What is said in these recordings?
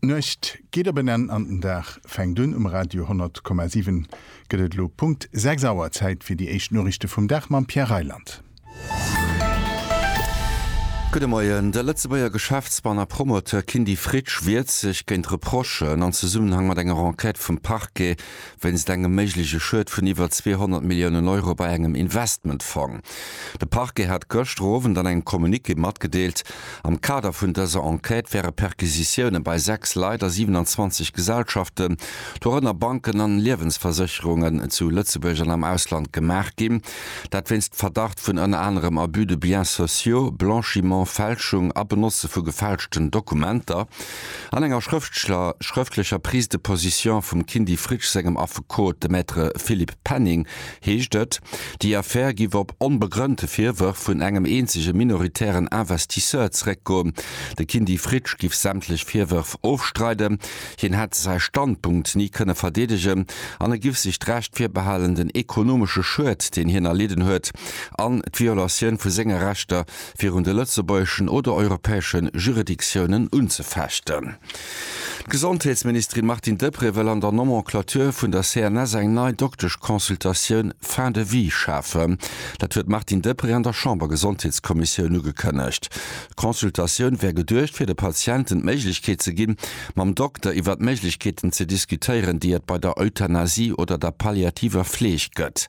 D'Nuecht geet op en Enn an den Dag fänkt un. Um Radio 100,7 gëtt et elo Punkt 6 Auer. Zäit fir déi éischt Noriichte vum Dag mam Pierre Reyland. Gudde Moien. De Lëtzebuerger Geschäftsmann a Promoteur Kindy Fritsch wiert sech géint Reprochen an Zesummenhang mat enger Enquête vum Parquet wéinst engem méigleche Schued vun iwwer 200 Milliounen Euro bei engem Investmentfong. De Parquet hat gëschter Owend an engem Communiqué matgedeelt, am Kader vun dëser Enquête wäre Perquisitioune bei 6 Leit a 27 Gesellschaften, dorënner Banken an Liewensversécherungen, zu Lëtzebuerg an am Ausland gemaach ginn. Dat wéinst Verdacht vun ënner anerem Abus de biens sociaux, Blanchiment, Fälschung a Benotze vu gefälschten Dokumenter. An enger schrëftschler schrëftlecher Prise de position vum Kindy Fritsch sengem Affekot, de Maître Philippe Penning, heescht et, déi Affär giff op onbegrënnte Virwërf vun engem eenzege minoritären Investisseur zeréckgoen. De Kindy Fritsch giff sämtlech Virwërf ofstreiden, hien hätt säi Standpunkt ni kënne verdeedegen an e giff sech d'Recht virbehalen, den ekonomesche Schued, deen hien erlidden huet, an d'Violatioun vu senge Rechter virun de lëtzebuergeschen oder europäesche Juridictiounen unzefechten. D'Gesondheetsministerin Martine Deprez wëll an der Nomenclature vun der CNS eng nei Dokteschconsultatioun fin de vie schafen. Dat huet d'Martine Deprez an der Chambergesondheetskommissioun ugekënnegt. D'Consultatioun wär geduecht fir de Patienten d'Méiglechkeet ze ginn, mam Dokter iwwer d'Méiglechkeeten ze diskutéieren, déi et bei der Euthanasie oder der palliativer Fleeg gëtt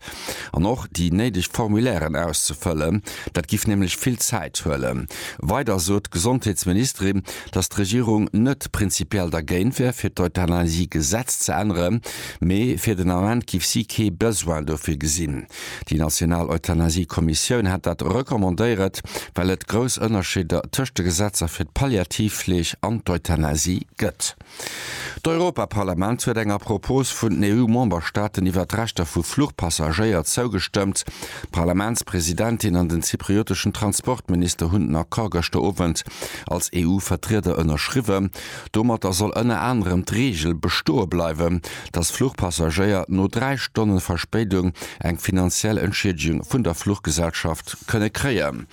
an och déi néideg Formulairen auszefëllen. Dat giff nämlech vill Zäit huelen. Weider sot d'Gesondheetsministerin, datt d'Regierung net prinzipiell dergéint wär fir d'Euthanasie-Gesetz ze änneren, mee fir den Ament giff si kee Besoin dofir gesinn. Déi national Euthanasie-Kommissioun hätt dat recommandéiert, well et grouss Ënnerscheeder tëscht de Gesetzer fir d'Palliativfleeg an d'Euthanasie gëtt. D'Europaparlament huet enger Propos vun den EU-Memberstaaten iwwer d'Rechter vu Fluchpassagéier zougestëmmt. D'Parlamentspresidentin an den zyprioteschen Transportminister hunn den Accord gëschter Owend als EU-Vertrieder ënnerschriwwen. Domatter soll ënner anerem d'Reegel bestoe bleiwen, datt Fluchpassagéier no dräi Stonne Verspéidung eng finanziell Entschiedegung vun der Fluchgesellschaft kënne kréien.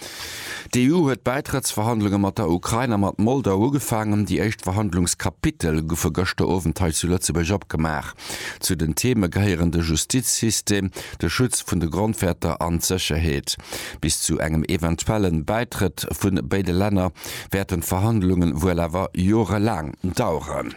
D'EU huet d'Bäitrëttsverhandlunge mat der Ukrain a mat Moldau ugefaangen. Déi éischt Verhandlungskapitel goufe gëschter Owend hei zu Lëtzebuerg opgemaach. Zu den Theeme gehéieren de Justizsystem, de Schutz vun de Grondwäerter an d'Sécherheet. Bis zu engem eventuelle Bäitrëtt vun béide Länner wäerten d'Verhandlunge wuel awer jorelaang daueren.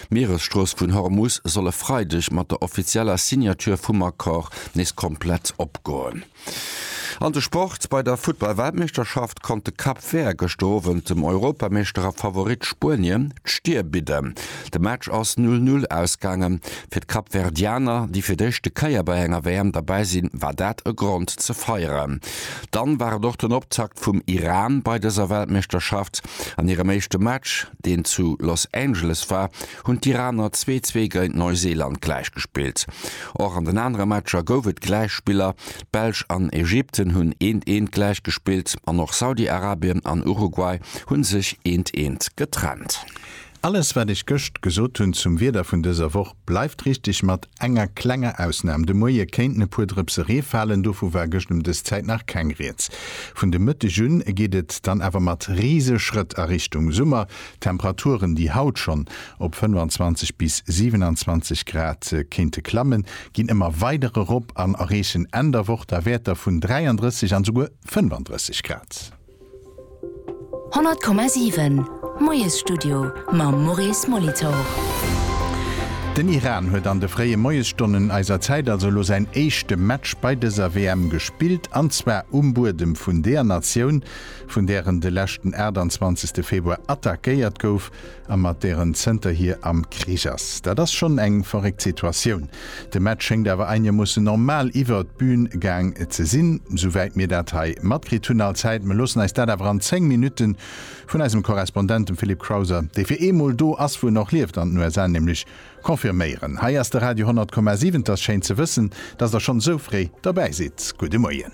D'Mieresstrooss vun Hormus soll e Freideg mat der offizieller Signature vum Accord nees komplett opgoen. An de Sport, Bei der Futtball-Weltmeeschterschaft konnt de Cap Vert gëschter Owend dem Europameeschter a Favorit Spuenien d'Stir bidden. De Match ass Null-Null ausgaangen. Fir d'Kapverdianer, déi fir d'éischte Kéier bei enger WM derbäi sinn, war dat e Grond ze feieren. Dann war et och den Optakt vum Iran bei dëser Weltmeeschterschaft. An hirem éischte Match, deen zu Los Angeles war, hunn d'Iraner zwee zwee géint Neuseeland gläichgespillt. Och an den anere Matcher gouf et Gläichspiller, d'Belsch an Ägypten hunn eent eent gläichgespillt an och Saudi-Arabien an Uruguay hu sech eent eent getrennt. Alles wat ech gëscht gesot hunn zum Wieder vun dëser Woch. Bleift richteg mat enger klenger Ausnahm. De Moie kéinten e puer Drëpse Ree falen, dovu war gëscht ëm dës Zäit nach keng Rieds. Vun de Mëtteg un geet et dann awer mat rise Schrëtt a Richtung Summer. D'Temperaturen, déi haut schonn op 25 bis 27 Grad kéinte klammen, ginn ëmmer weider erop an erreechen Enn der Woch da Wäerter vun 33 an esouguer 35 Grad. 100,7 Moiesstudio mam Maurice Molitor. Den Iran huet an de fréie Moiesstonnen eiser Zäit also elo säin éischte Match bei dëser WM gespillt, an zwar um Buedem vun deer Natioun, vun där en de leschten 28. Februar attackéiert gouf, a mat där en zënterhier am Krich ass. Dat ass schonn eng verréckt Situatioun. De Match schéngt awer einigermoossen normal iwwert d'Bühn gaang ze sinn, souwäit mir dat hei matkritt hunn. Allzäit, mir loossen eis dat awer an 10 Minutte vun eisem Korrespondent, dem Philippe Crowther, dee fir eemol do ass, wou en och lieft, an den USA nämlech, confirméieren. Hei ass de Radio 100,7. 't ass schéin ze wëssen, dass der schonn esou fréi derbäi sidd. Gudde Moien.